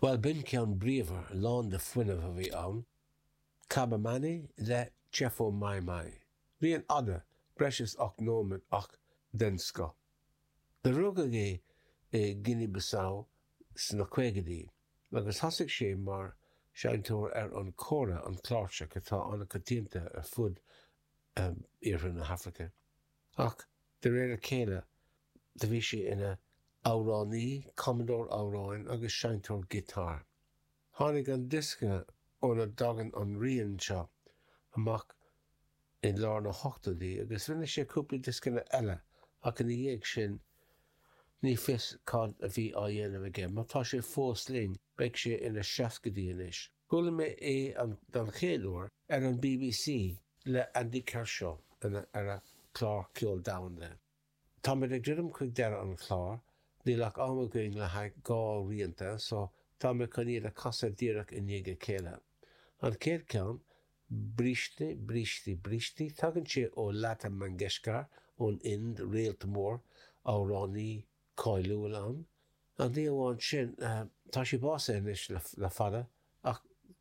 Bhuel, b'in ceann bríomhar lán de fuinneamh a bhí ann. Kaba Mane le Tchefo Mai Mai. Bhí sé an-fhada, breis is ocht nóiméad, ach den scoth. Do rugadh é i Guinea Bissau sna caogaidí agus thosaigh sé mar seinnteoir ar an Kora, an cláirseach atá an-coitianta ar fud iarthar na hAfraice. Ach de réir a chéile do bhí sé ina amhránaí, cumadóir amhráin agus seinnteoir giotáir. Tháinig an diosca óna dtagann an rian seo amach i lár na hochtóidí agus rinne sé cúpla dioscanna eile ach ina dhiaidh sin ní fios cad a bhí á dhéanamh aige. Má tá sé fós linn beidh sé ina seascaidí anois. Chuala mé é don gcéad uair ar an BBC le Andy Kershaw ar a chlár Ceol Domhanda. Táimid ag druidim chuig deireadh an chláir, níl ach am againn le haghaidh dhá rianta so tá mé chun iad a chasadh díreach i ndiaidh a chéile. An chéad cheann, Briste, Bríste, Brístí, tagann sé ó Lata Mangeshkar ón Ind, réalt mór, amhránaí cáiliúil ann. Ní amháin sin, tá sí básaithe anois le fada, ach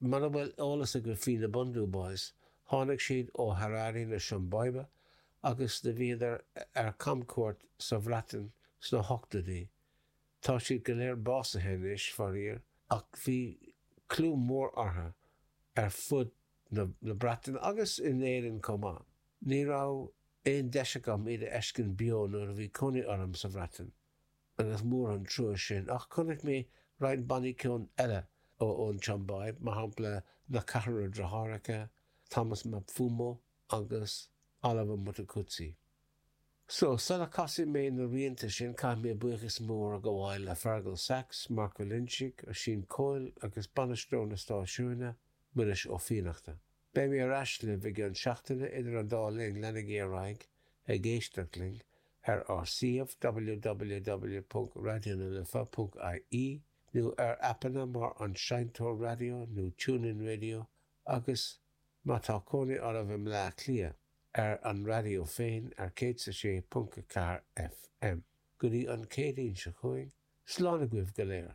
Muna bhfuil eolas agaibh faoi na Bhundu Boys, tháinig siad ó Harare na Siombáibe agus do bhíodar ar camchuairt sa Bhreatain sna hochtóidí. Tá siad go léir básaithe anois, faraor, ach bhí clú mór orthu ar fud na Breataine agus in Éirinn chomh maith. Ní raibh aon deis agam iad a fheiscint beo nuair a bhí cónaí orm sa Bhreatain. agus mór an trua sin, ach chonaic mé roinnt bannaí ceoil eile ó ón tSiombáib, mar shampla Na Ceithre Deartháireacha, Thomas Mapfumo agus Oliver Mtukudzi. So, sula casfaidh mé na rianta sin caithfidh mé buíochas mór a ghabháil le Fergal Saxe, Mark Ó Loingsigh, Oisín Coyle agus bainisteoir na stáisiúine, Muiris Ó Fiannachta. Beidh mé ar ais libh i gceann seachtaine idir an dá linn leanaigí ar aghaidh ag éisteacht linn ar ár suíomh www.raidionalife.ie nó ar aipeanna mar An Seinnteoir Raidió nó TuneIn Radio agus, má tá cónaí oraibh i mBleá Cliath, ar an raidió féin ar 106.4 FM. Go dtí an Chéadaoin seo chugainn, slán agaibh go léir!